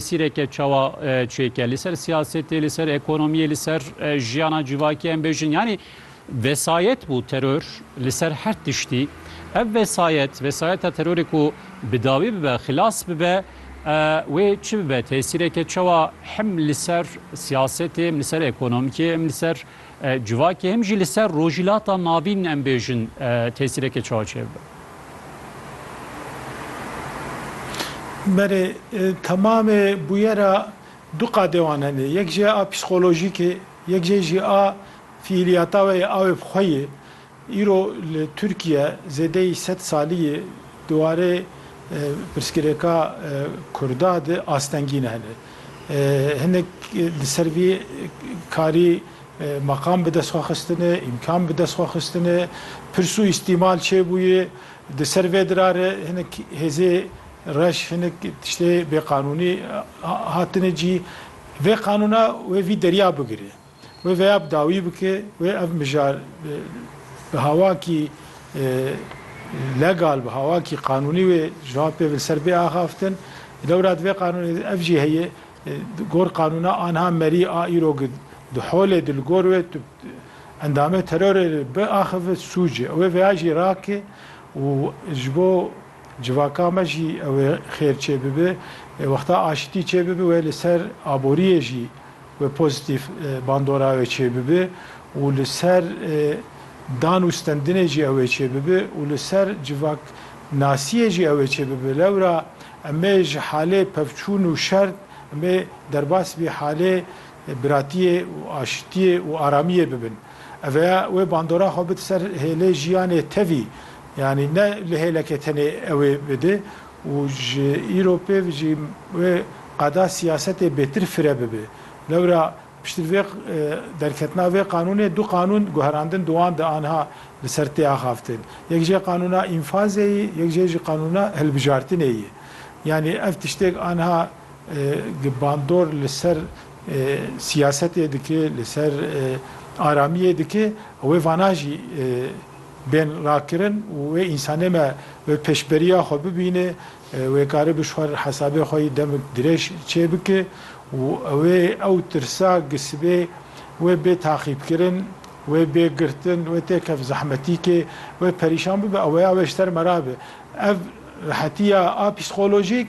Sîreke çawa çêke li ser siyasetê, li ser ekonomiyê, li ser jiyana civakî em bêjin yanî vesayet bû teror li ser her tiştî. Ev vesayet, vesayeta terorê ku bi dawî bibe, xilas bibe wê çi bibe, tesîreke çawa hem li ser siyasetê, hem li ser ekonomikê, hem li ser Civakê him jî li ser Rojhîlata Navîn em bêjin tesîrekê çawa çêbibe. Berê temamê bûyera du qadê wan hene. Yek jê a psîkolojîk ê, yek jê jî a fîîliyata we yê awê bi xwe yê. Îro li Tirkiye zêdeyî sed salî ye di warê pirsgirêka Kurda de astengîn hene. Hinek li ser vî karî meqam bi dest xwe xistine, îmkan bi dest xwe xistine, pirs û îstîmal çêbûye. Di ser vê dirare hinek hêzê reş, hinek tiştê bêqanûnî hatine cî. Vê qanûna wê vî derya bigire. Wê vêya bi dawî bike, wê ev mijar bi hawakî legal, bi hawakî qanûnî wê ji van pê li ser bê axaftin. Di dewra divê qanûnê de ev jî heye, di gor qanûna anha merî a îro ki di holê di li gor wê tu endamê terorê biaxivit sûc e. Wê vêya jî rake û ji bo. Civaka me jî ew ê xêr çêbibe. Wexta aşitî çêbibe wê li ser aboriyê jî wê pozîtîf bandora wê çêbibe û li ser dan û stendinê jî ew ê çêbibe û li ser civak nasiyê jî ew ê çêbibe. Lewra em ê ji halê pevçûn û şer em ê derbas vî halê Biratiyê û aşitiyê û aramiyê bibin. Eveya wê bandora xwe bid ser hêlê jiyanê tevî, yanî ne li hêlekê tenê ewê bide û ji îro pêv jî wê qada siyasetê bêtir fire bibe. Lewra piştî vê derketina vê qanûnê du qanûn guherandin di wan de anha li ser tê axaftin. Yek jê qanûna înfazê yê, yek jê jî qanûna hilbijartinê yê. Yanî ev tiştêk anha. Gi bandor li ser siyasetê dike, li ser aramiyê dike, wê vana jî bên rakirin û wê însanê me bi pêşberiya xwe bibîne, wê karibe ji xwe re hesabê xwe yî demik dirêj çê bike û wê ew tirsa gi sibê wê bê taxîbkirin, wê bê girtin, wê tê kef zehmetîkê, wê perîşan bibe, ew weya wê ji ter me rabe. Ev rehetiya a psîkolojîk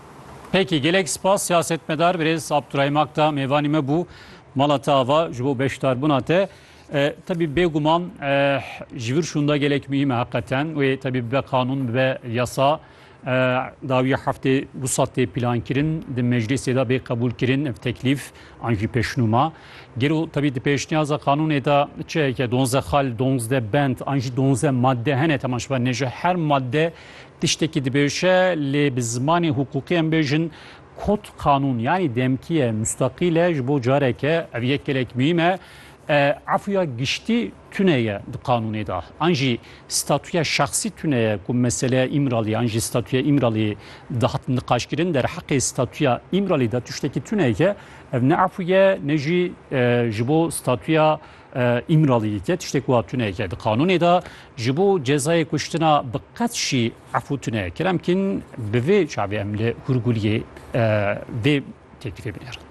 Peki gelek spas siyasetmedar birêz Abdurahim Akta mêvanî me bû mala te ava ji bo beşdarbûna te. Tebî bêguman ji vir şûnda gelek muhîme heqeten wê tebî bibe qanûn bibe yasa dawî heftê wisa tê pîlankirin di meclîsê de bê qebûlkirin ev teklîf an jî pêşnûma. Gero tebî di pêşniyaza qanûnê de çi heke donze xal donzde bend an jî donze madde hene temaşba nêje her madde Tiştekî dibêje lê bi zimanê hukûkî em bêjin kod qanûn yanî demkîye mustaqîl e ji bo careke ev yek gelek muhîm e efûya giştî tune ye di qanûnê de an jî statûya şexsî tune ye ku meseleya Îmralî an jî statûya Îmralî dihat niqaşkirin derheqê statûya Îmralî de tiştekî tune ye ev ne efûye ne jî ji bo statûya Îmraliyî ke tiştê ku tune ye di qanûnê de ji bo cezayê kuştina bi qet jî efû tune ye kir. Em kîn bi vê çavê em li Hûrguliyê vê teklîfê binêrin.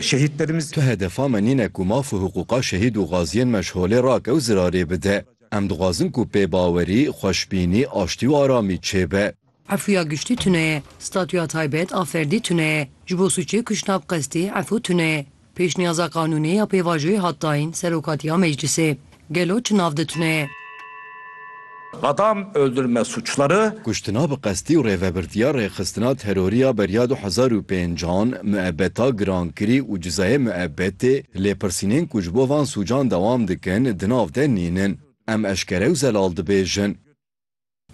Şehîdlerimiz. Tu hedefa me nîne ku maf û hiqûqa şehîd û xaziyên me ji holê rake û zirarê bide. Em dixwazin ku pêbawerî, xweşbînî, aştî û aramî çêbe. Efuya giştî tune ye. Statuya taybet a ferdî tune ye. Ji bo sûcê kuştina bi qestî efu tune ye. Pêşniyaza qanûnê ya pêvajoyê hat dayîn Serokatiya Meclîsê. Gelo çi nav de tune ye? Adam öldürme suçları. Kuştina bi qestî û rêvebirtiya rêxistina terorî ya beriya du hezar û pênc an, muebeta girankirî û cizayê muebetê, lêpirsînên ku ji bo van sûcan dewam dikin, di nav de nînin. Em eşkere û zelal dibêjin.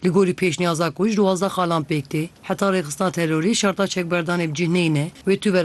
Li gorî pêşniyaza ku ji duwazdeh xalan pêk tê heta rêxistina terorî, şerta çekberdanê bi cih neyne, wê tu vera